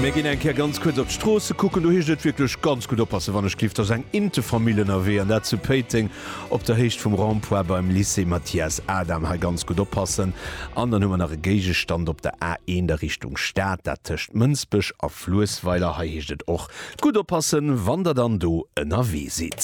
Mir ginn eng Kéier ganz kuerz op d'Stroosse kucken. Do heescht et wierklech ganz gutt oppassen, wann ech gleeft. Da ass eng inte Famill ënnerwee, an dat zu Péiteng op der Héicht vum Rond-point beim Lycée Mathias Adam. Hei ganz gutt oppassen. An dann hu mer nach e Géigestand op der A1 a Richtung Stad, dat tëscht Mënsbech a Fluessweiler. Hei heescht et och gutt oppassen, wann Der dann do ënnerwee sidd.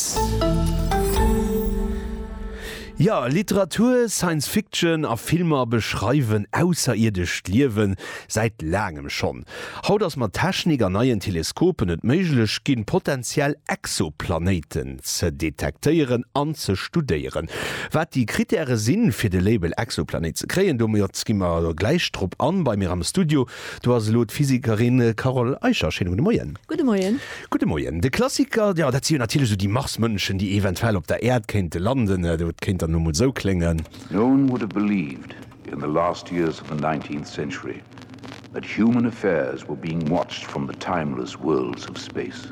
Jo, Literatur, Science Fiction a Filmer beschreiwen ausserierdescht Liewen säit laangem schonn. Haut ass mat Technik an neien Teleskopen et méiglech ginn, potentiell Exoplanéiten ze detektéieren an ze studéieren. Wat déi Krittäre sinn, fir de Label Exoplanéit ze kréien, domat gi mer gläich drop an. Bei mir am Studio Do ass elo d'Physikerin Carole Eicher. Schéine gudde Moien. Gudde Moien. Gudde Moien. De Klassiker, jo, dat si jo natierlech esou déi Marsmënschen, déi eventuell op der Äerd kéinte landen. Dat kéint dann emol esou kléngen. No one would have believed in the last years of the nineteenth century that human affairs were being watched from the timeless worlds of space.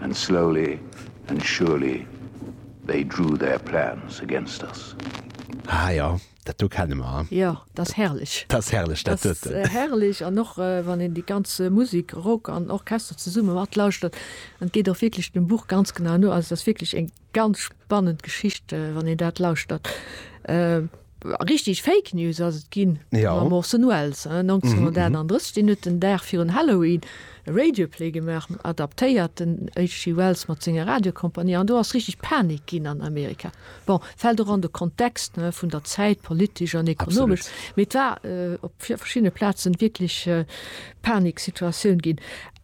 And slowly and surely they drew their plans against us. Ah jo, dat do kenne mer. Jo, dat ass herrlech. Dat ass herrlech, dat huet. Dat ass herrlech an och wann een déi ganz Musik, Rock an Orchester zesumme matlauschtert, et geet och wierklech dem Buch ganz genau no, also et ass wierklech eng. Ganz spannend Geschicht wann een dat lauschtert. Richteg Fake News ass et ginn mam Orson Welles. 1931, deen huet den Dag virun Halloween e Radioplay gemaach, en adaptéierten, HG Wells mat senger Radiocompagnie, an do ass richteg Panik ginn an Amerika. Bon, fält och an de Kontext vun der Zäit, politesch an ekonomesch, mee et war op verschiddene Plazen wierklech Paniksituatioun ginn.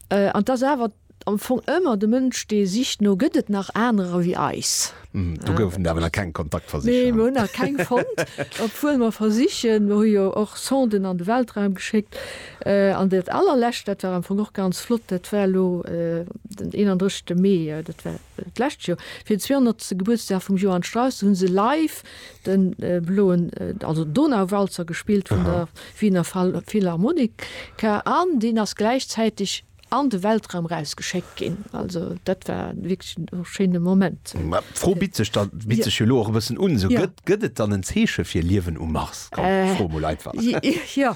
An 't ass awer. Am Fong ëmmer de Mënsch dee sicht no gëtt et nach anerer wéi eis. Do goufen der awer nach keng Kontaktversicher? Nee, mir hunn nach keng fonnt, obwuel mer versichen. Mir hu jo och Sonden an de Weltraum geschéckt. An dat allerlescht, dat war am Fong och ganz flott, dat war elo den 31 Mee, dat war d'lescht Joer, fir den 200. Gebuertsdag vum Johann Strauss, do hu se live de bloen, also Donauwalzer gespillt vun der Wiener Philharmonika an deen ass gläichzäiteg, An de Weltraum rausgeschéckt ginn. Also dat war wierklech e schéine Moment. Mä d'Fro bitt sech da, bitt sech jo elo och e bëssen un, esou, gëtt, gëtt et dann en Zeeche fir Liewen um Mars? Komm, ech froe mol einfach. Jo,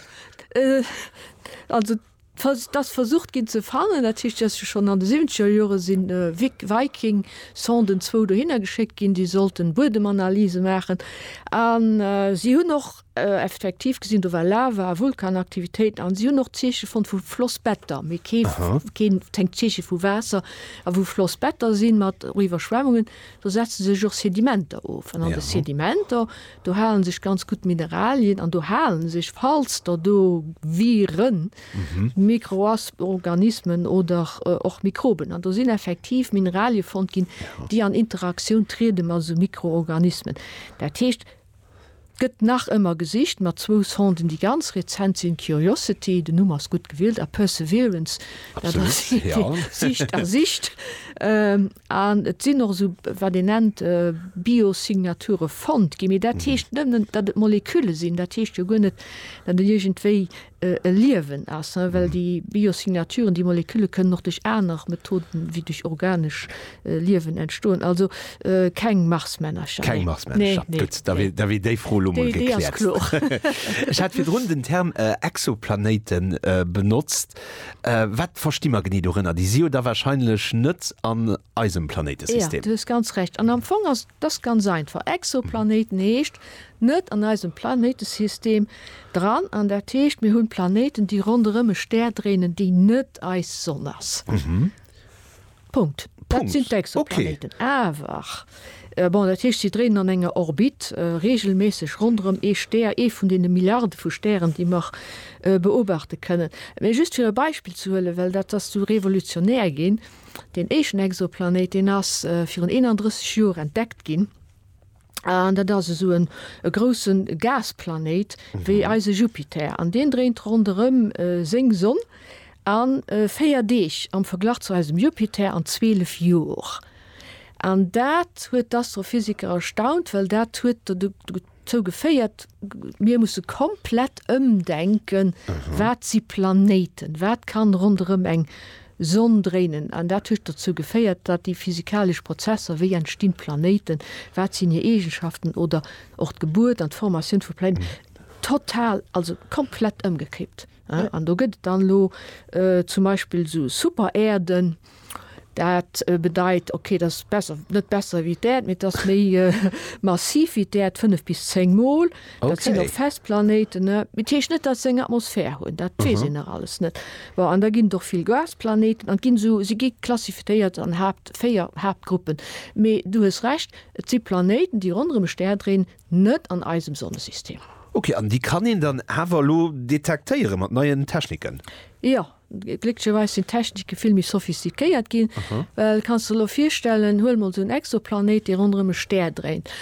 also et ass versucht ginn ze fannen. Dat heescht, et ass jo schonn an de siwwenzeger Jore si Viking-Sonden zwou dohinner geschéckt ginn, déi sollten Buedemanalyse maachen. A si hunn och Effektiv gesinn, do war Lava a Vulkanaktivitéiten an si hunn och Zeeche fonnt vu Flossbetter, mee kee keen tenkt Zeeche vu Waasser. A wou Flossbetter sinn mat och Iwwerschwemmungen, do setze sech och Sedimenter of. An an de Sedimenter, do hale sech ganz gutt Mineralien an do hale sech, falls der do Viren, Mikroas organismen oder och Mikroben, an do sinn effektiv Mineralie fonnt ginn, déi an Interaktioun triede mat esou Mikroorganismen. Dat heescht. Gëtt nach ëmmer gesicht mat zwou Sonden déi ganz rezent sinn, Curiosity, den Numm ass gutt gewielt, a Perseverance, dat ass een dee sicht a sicht. An et sinn och esou, wat een nennt, Biosignaturen fonnt ginn, mee dat heescht net, datt et Molekülle sinn, dat heescht jo guer net, datt een iergendwéi e Liewen ass, well déi Biosignaturen, déi Molekülle kënnen och duerch aner Methoden ewéi duerch organesch Liewen entstoen. Also keng Marsmännercher. Keng Marsmännercher, gutt, da wier déi Fro elo mol gekläert. Ech hat virdrun den Term Exoplanéite benotzt. Wat versti mer genee dorënner? Déi si jo da warscheinlech net an eisem Planéitesystem. Jo, du hues ganz Recht. An am Fong ass dass ganz einfach. Exoplanéiten heescht, net an eisem Planéitesystem dran, an dat heescht, mir hunn Planéiten, déi ronderëm e Stär dréinen, dee net eis Sonn ass. Punkt. Dat sinn d'Exoplaneten. Awer, bon, dat heescht, si dréinen an enger Orbit reegelméisseg ronderëm ee Stär, ee vun deene Milliarde vu Stären, déi mer beobachte kënnen. Mee just fir e Beispill ze huelen, well dat ass du revolutionär ginn, Deen éischten Exoplanéit, deen ass virun 31 Joer entdeckt ginn. An dat ass esou e grousse Gasplanéit wéi eise Jupiter. An deen dréint ronderëm seng Sonn a véier Deeg am Verglach zu eisem Jupiter an zwielef Jor. An dat huet d'Astrophysiker erstaunt, well dat huet dozou geféiert, mir musse komplett ëmdenken, wat si Planéiten, wat kann ronderëm eng. Sonn dréinen, an dat huet dozou geféiert, datt déi physikalesch Prozesser, wéi entstinn d'Planéiten, wat sinn hir Eegenschaften oder och d'Gebuert an d'Formatioun vu Planéiten, total, also komplett ëmgekippt. An do gëtt et dann elo zum Beispill esou Superäerden, dat bedeit, okay, dat ass besser, net besser wéi d'Äerd, mee et ass méi massiv wéi d'Äerd, fënnef bis zéng mol. Dat sinn och fest Planéiten, ne? Et heescht net, datt se eng Atmosphär hunn, dat weess een nach alles net. Bon, an da ginn et och vill Gasplanéiten an et ginn esou, se gi klassifizéiert an Haapt, véier Haaptgruppen. Mee du hues Recht, et si Planéiten, déi ronderëm e Stär dréinen, net an eisem Sonnesystem. Ok, an déi kann een dann awer elo detektéiere mat neien Techniken? Jo, Glécklecherweis sinn d'Technike vill méi sophistiquéiert ginn, well kanns de elo virstellen, huel mol esou en Exoplanéit, dee ronderëm e Stär dréint.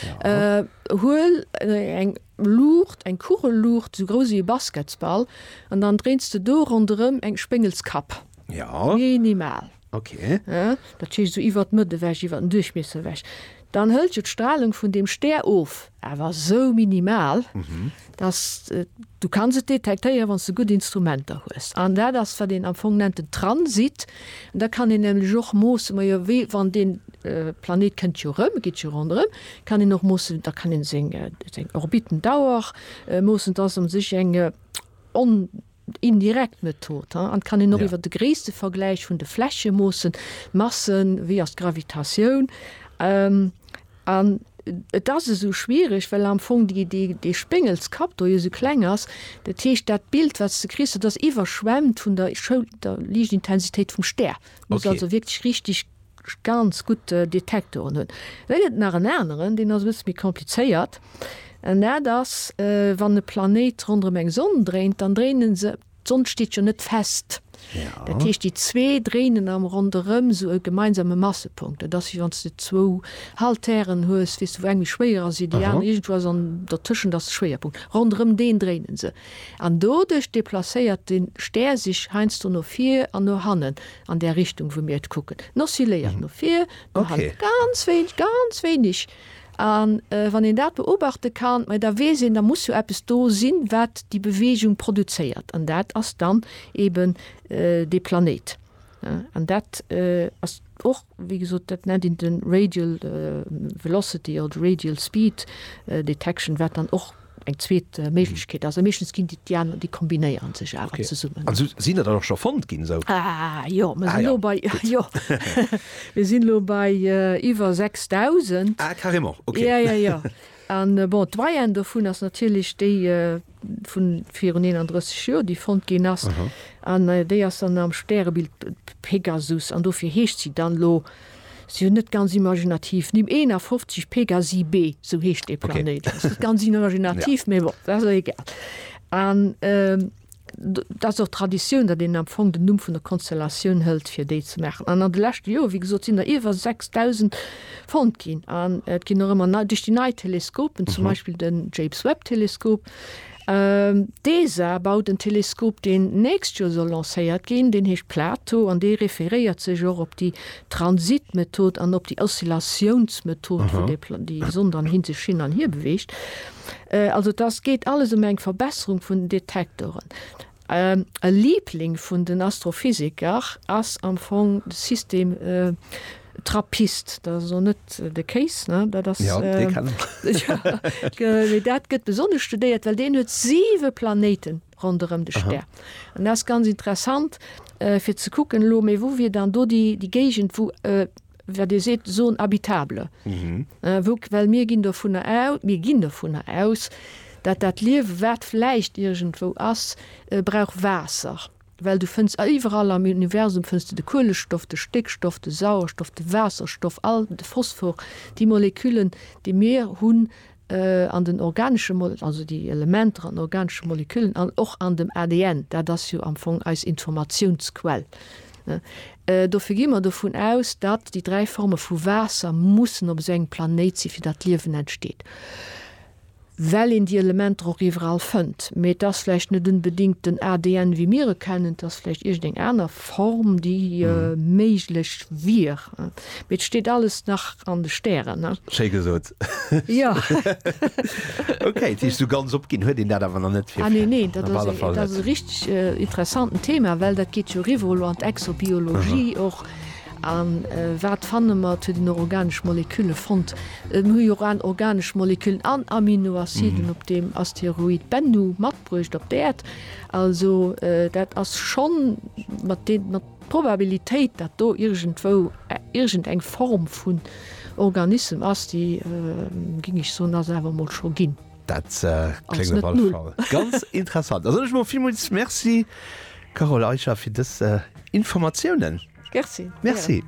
Huel eng Luucht, eng Kugelluucht esou grouss ewéi e Basketsball, an dann dréins de do ronderëm eng Spéngelskapp. Minimal. Ok. Dat heescht esou iwwert d'Mëtt ewech, iwwert den Duerchmiesser ewech. Dann hëlt jo d'Stralung vun deem Stär of, awer esou minimal, dass du kanns et detektéieren, wann s de gutt Instrumenter hues. An dat ass, wat een am Fong nennt den Transit. An da kann een nämlech och moossen, majo wéi wann deen Planet kënnt jo erëm, geet jo ronderëm, kann een och moossen, da kann een seng Orbitendauer moossen. Dat ass u sech eng on. indirekt Method he an kann een och iwwer de Gréisstevergläich vun de Fläche moossen, Massen, wéi ass d'Gravitatioun an et ass esou schwiereg, well am Fong déi déi dee Spéngelskapp do jo esou kleng ass. Dat heescht dat Bild wat s de kriss, dat ass iwwerschwemmt vun der Schoul der Liichtintensitéit vum Stär, muss also wierklech richtig. ganz gutt Detektoren hunn. Da gëtt et nach en aneren, deen ass e bësse méi komplizéiert, an dat ass, wann e Planéit ronderëm eng Sonn dréint, dann dréine se, d'Sonn steet jo net fest, dat heescht, déi zwee dréinen am Ronderëm esou e gemeinsame Massepunkt. Dat ass, wéi wann s de zwou Haltèren hues, weess de, wou eng méi schwéier ass wéi déi aner, iergendwou ass an dertëschent ass de Schwéierpunkt, ronderëm deen dréine se. An doduerch deplacéiert de Stär sech heiansdo no vir an no hannen, An där Richtung, wou mir et kucken. En oscilléiert no vir, no hanne ganz wéineg, ganz wéineg. A wann een dat beobachte kann, ma da weess een, da muss jo eppes do sinn, wat déi Beweegung produzéiert. An dat ass dann eeben dee Planéit. An dat ass och. Wéi gesot, dat nennt een de Radial Velocity oder Radial Speed Detection, wat dann och eng zweet Méiglechkeet ass. A meeschtens ginn déi aner, déi kombinéieren sech awer zesummen. An esou sinn der dann och scho fonnt ginn? Esou? Ah jo, mer sinn elo bei, jo, mir sinn elo bei iwwer 6.000. Ah carrément, ok. Jo, jo, jo. An bon, d'Moyenne dovun ass natierlech déi. vun virun 31 Joer, déi fonnt ginn ass. An déi ass dann am Stärebild Pegasus an dofir heescht si dann elo, si jo net ganz imaginativ, Nimm 51 Pegasi b, esou heescht dee Planéit. Dat ass net ganz imaginativ, mee bon, dat ass elo egal. An dat ass och d'Traditioun, datt een am Fong den Numm vun der Konstellatioun hëlt, fir déi ze maachen. An an de leschte Joer, wéi gesot, sinn der iwwer 6.000 fonnt ginn an et ginn och ëmmer nei duerch déi nei Teleskopen, zum Beispill den James Webb Teleskop. D'ESA baut en Teleskop, deen d'nächst Joer soll lancéiert ginn, deen heescht Plato an dee referéiert sech och op déi Transitmethod an op déi Oszillatiounsmethod, wou dee Pla, déi Sonn dann hin, sech hin an hir beweegt. Also et ass, geet alles ëm eng Verbesserung vun den Detektoren. E Liebling vun den Astrophysiker ass am Fong de System Trappist. Dat ass elo net de Kéis, dat ass. Jo, dee kennen ech. Mee dat gëtt besonnesch studéiert, well deen huet siwe Planéiten ronderëm de Stär. An dat ass ganz interessant, fir ze kucken elo, mee wou wier dann do déi Géigend, wou. Wa Dir seet zone habitable, wou, well mir ginn dovunner aus, mir ginn dovunner aus, dat dat Liewe wat vläicht iergendwou ass, brauch Waasser, well du fënns iwwerall am Universum fënns de de Kuelestoff, de Stéckstoff, de Sauerstoff, de Waasserstoff, all, de Phosphor, déi Moleküllen, déi mir hunn, an den organesche Moleküllen, also déi Elementer an den organesche Moleküllen an och an dem ADN, dat ass jo am Fong eis Informatiounsquell. Dofir gi mer dovun aus, datt déi dräi Forme vu Waasser mussen op esou engem Planéit sinn, fir datt d'Liewen entsteet, well een déi Elementer och iwwerall fënnt. Mee et ass vläicht net unbedéngt den ADN, wéi mir e kennen, et ass vläicht iergendeng aner Form, déi méiglech wier. Mee et steet alles nach an de Stären. Schéi gesot. Ja. Okay, dat heescht, esou ganz opginn huet een dat awer nach net fir. Ah, nee, nee, dat ass e, dat ass e richteg interessanten Thema, well dat geet jo eriwwer elo an d'Exobiologie och. A wat fanne mer? Et huet een och organesch Molekülle fonnt. Mir hu jo och an organesch Moleküllen an Aminoaciden op deem Asteroid Bennu matbruecht op d'Äerd. Also dat ass schonn mat deem, mat. D'Probabilitéit, datt do iergendwou iergendeng Form vun Organissem ass, déi, géing ech soen, ass awer mol scho ginn. Dat kléngt op alle Fall ganz interessant. Da soen ech mol villmools Merci, Carole Eicher, fir dës Informatiounen. Merci. Merci.